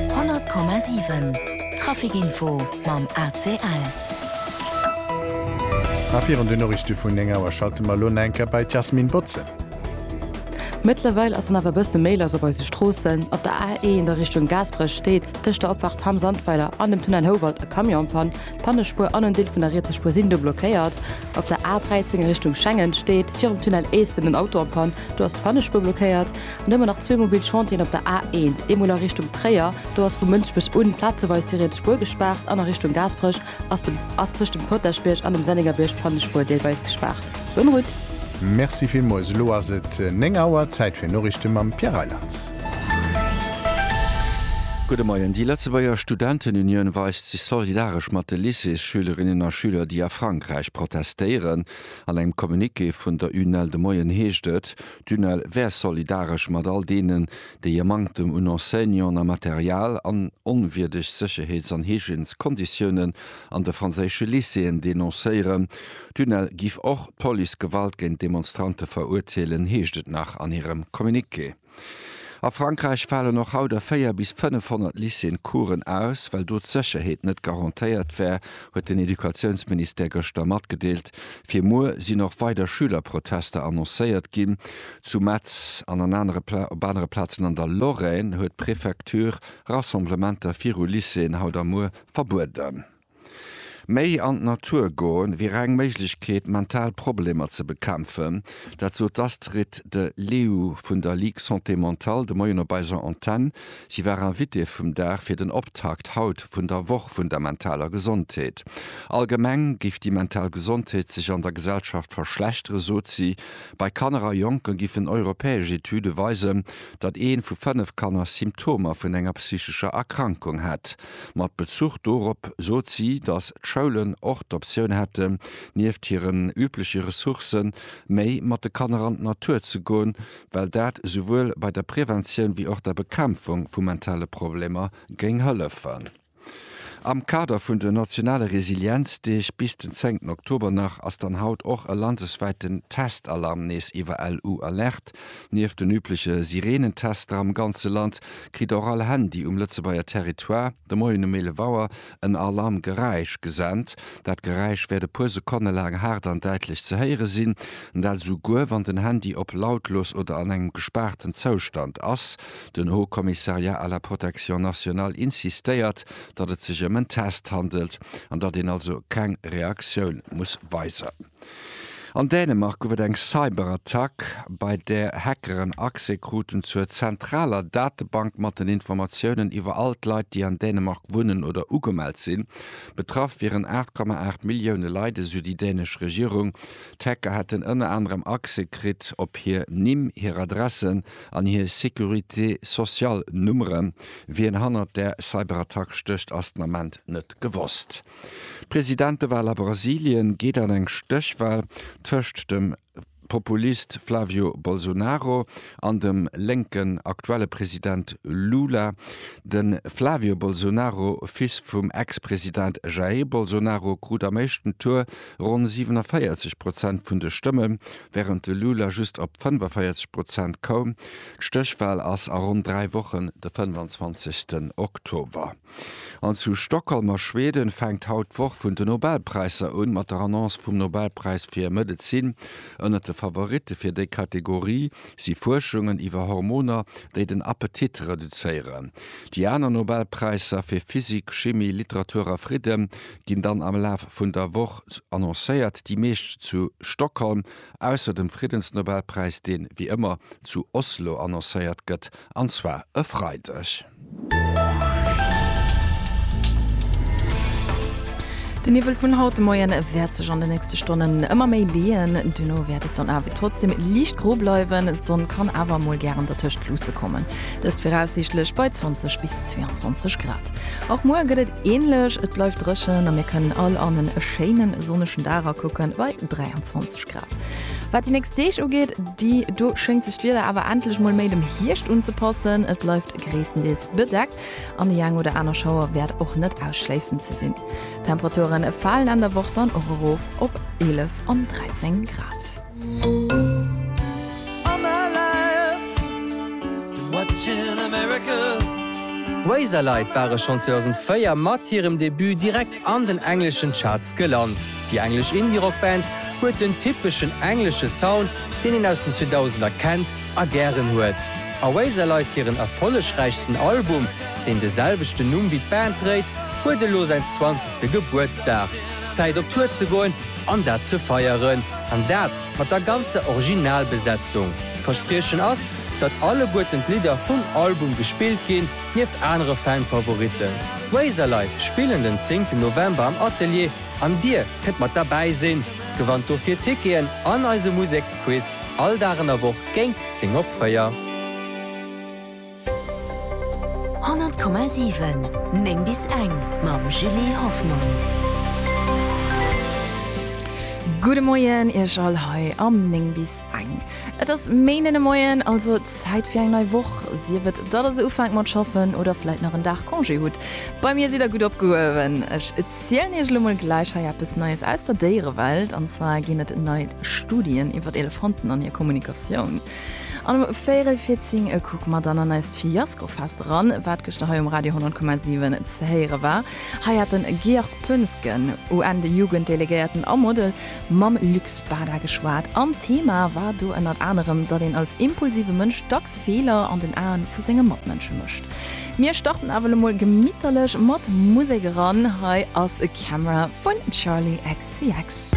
100,7 Trafic Info mam ACL. A virun den Noriichte vun 9 Auer schalte mer elo nach eng Kéier bei d'Yasmine Botze. Mëttlerweil ass dann awer e bësse méi lass op eise Stroossen. Op der A1 a Richtung Gaasperech steet tëscht der Opfahrt Hamm Sandweiler an dem Tunnel Houwald e Camion am Pann. D'Pannespuer an en Deel vun der rietser Spuer sinn do blockéiert. Op der A13 a Richtung Schengen steet virum Tunnel Eesten en Auto am Pann. Do ass d'Pannespuer blockéiert. Nëmmen nach zwee mobil Chantieren op der A1, eemol a Richtung Tréier, do ass vu Mënsbech un plazeweis déi riets Spuer gespaart, an a Richtung Gaasperech ass dem ass tëscht dem Potaschbierg an dem Sennéngerbierg d'Pannenspuer deelweis gespaart. Bonne route! Merci villmols, elo ass et 9 Auer, Zäit fir Noriichte mam Pierre Reyland. Gudde Moien. Déi Lëtzebuerger Studentenunioun weist sech solidaresch mat de Lycéesschülerinnen a Schüler, déi a Frankräich protestéieren. An engem Communiqué vun der UNEL de Moien heescht et, D'UNEL wär solidaresch mat all deenen, déi e Manktem un Enseignanten a Material an onwierdeg Sécherheets an Hygièneskonditiounen an de franséische Lycéeën denoncéieren. D'UNEL giff och d'Police Gewalt géint Demonstrante verurteelen, heescht et nach an hirem Communiqué. A Frankräich falen och haut a 4 bis 500 Lycéeën Coursen aus, well do d'Sécherheet net garantéiert wär, huet den Educatiounsministère gëschter matgedeelt. Fir muer sinn och weider Schülerprotester annoncéiert ginn. Zu Metz an an anere op anere Plazen an der Lorraine huet d'Prefecture Rassemblementer viru Lycéeën haut a muer verbueden. Méi an d'Natur goen, wier eng Méiglechkeet, mental Problemer ze bekämpfen. Dat sot d'Astrid de Leeuw vun der Ligue Santé Mentale de Moien op eiser Antenn. Si war Invitée vum Dag fir den Optakt haut vun der Woch vun der mentaler Gesondheet. Allgemeng géif déi mental Gesondheet sech an der Gesellschaft verschlechtere sot si. Bei Kanner a Jonke giffen europäesch Etüde weisen, datt ee vu fënnef Kanner Symptomer vun enger psychescher Erkrankung hätt. Mat Bezuch dorop sot si, datt d'Schoulen och d'Optioun hätten, nieft hiren übleche Ressourcen, méi mat de Kanner an d'Natur ze goen, well dat esouwuel bei der Preventioun wéi och der Bekämpfung vu mentale Problemer géing hëllefen. Am Kader vun den nationale Resilienzdeeg bis den zéngten Oktober nach ass dann haut och e landeswäiten Testalarm nees iwwer LU Alerte. Nieft den übleche Sireenentester am ganze Land, kritt och all Handy um Lëtzebuerger Territoire de Moien um 11 Auer en Alarmgeräisch gesent. Dat Geräisch wäert e puer Sekonne laang haart an däitlech ze héiere sinn, dat esouguer wann den Handy op lautlos oder an engem gespaarten Zoustand ass. Den Haut Commissariat à la Protection Nationale insistéiert, datt et sech ëm en Test handelt an datt een also keng Reaktioun muss weisen. An Dänemark gouf et eng Cyberattack, bei där Hackeren Accès kruten zur zentraler Datebank mat den Informatiounen iwwer all d'Leit, déi an Dänemark wunnen oder ugemellt sinn. Betraff wieren 8,8 Millioune Leit, esou déi dänesch Regierung. D'Hacker hätten ënner anerem Accès kritt op hir Nimm, hir Adressen an hir Sécurité sociale-Nummeren. Wien hannert der Cyberattack stécht, ass den Ament net gewosst. D'Presidentewal a Brasilien geet an eng Stéchwal tëscht dem Populist Flavio Bolsonaro an dem lénken aktuelle President Lula. De Flavio Bolsonaro, Fils vum Ex-President Jair Bolsonaro, krut am éischten Tour ronn 47 Prozent vun de Stëmme, wärend de Lula just op 45 Prozent koum. D'Stéchwal ass a ronn dräi Wochen, de 25. Oktober. An zu Stockholm a Schweden fänkt haut d'Woch vun de Nobelpräisser un, mat der Annonce vum Nobelpräis fir Medezin. Ënnert de Favoritte fir déi Kategorie si Fuerschungen iwwer Hormoner, déi den Appetit reduzéieren. Déi aner Nobelpräisser, fir Physik, Chimie, Literatur a Fridden, ginn dann am Laf vun der Woch annoncéiert, déi meescht zu Stockholm. Ausser dem Friddensnobelpräis, deen, wéi ëmmer, zu Oslo annoncéiert gëtt, an zwar e Freideg. Den Niwwel vun haut de Moien wäert sech an de nächste Stonnen ëmmer méi leeën. Duerno wäert et dann awer trotzdeem liicht gro bleiwen, d'Sonn kann awer mol gären dertëscht luusse kommen. Dëst viraussiichtlech bei 20 bis 22 Grad. Och muer gëtt et. Ähnlech, et bleift dréchen a mir kënnen all an en e schéine sonnegen Dag akucken bei 23 Grad. Wat déi nächst Deeg ugeet, déi do schéngt sech d'Wieder awer endlech mol méi dem Hierscht unzepassen. Et bleift gréisstendeels bedeckt an déi eng oder aner Schauer wäert och net ausschléissen ze sinn. D'Temperature falen Enn der Woch dann och erof op 11 an 13 Grad. Razorlight ware schonn 2004 mat hirem Debut direkt an den engleschen Charts gelant. Déi englesch Indie-Rock-Band huet den typeschen englesche Sound, deen een aus den 2000er kennt a gären huet. A Razorlight hiren erfollegräichsten Album, deen de selwechten Numm wéi d'Band dréit, huet elo säin zwanzegste Gebuertsdag. Zäit op Tour ze goen! An dat ze feieren, an dat mat der ganzer Originalbesetzung. D'Verspriechen ass, datt alleguerten d'Lidder vum Album gespillt ginn, nieft anere Fan-Favoritten. D'Razorlei spillen den zéngten November am Atelier an dir kënnt mat derbäi sinn. Gewannt dofir Ticketen an eise Museksquiz all Dag an der Woch géint 10 op 4. 100,7 9 bis eng mam Julie Hoffmann. Gudde Moien Iech all hei am 9 bis eng. Et ass Méinden de Moien, also Zäit fir eng nei Woch, sief et datt der se ufänkt mat schaffen oder vläit nach en Dag Congé hutt. Bei mir sidd der gutt opgehuewen. Ech zielen Iech elo mol gläich hei eppes Neies aus der Déierewelt. An zwar ginn et nei Studien iwwer Elefanten an hir Kommunikatioun. An um véierel fir zing e Kuck mat an an eist Fiaskofest eran, wat gëschter hei um Radio 100,7 ze héiere war. Hei hat de Georg Poensgen, UN-Jugenddelegéierten a Model, mam Luc Spada geschwat an d'Thema war do ënnert anerem, datt een als impulsive Mënsch dacks Feeler an den Aen vu senge Matmënsche mécht. Mir starten awer elo emol gemitterlech mat Musek eran. Hei ass Camera vun Charli XCX.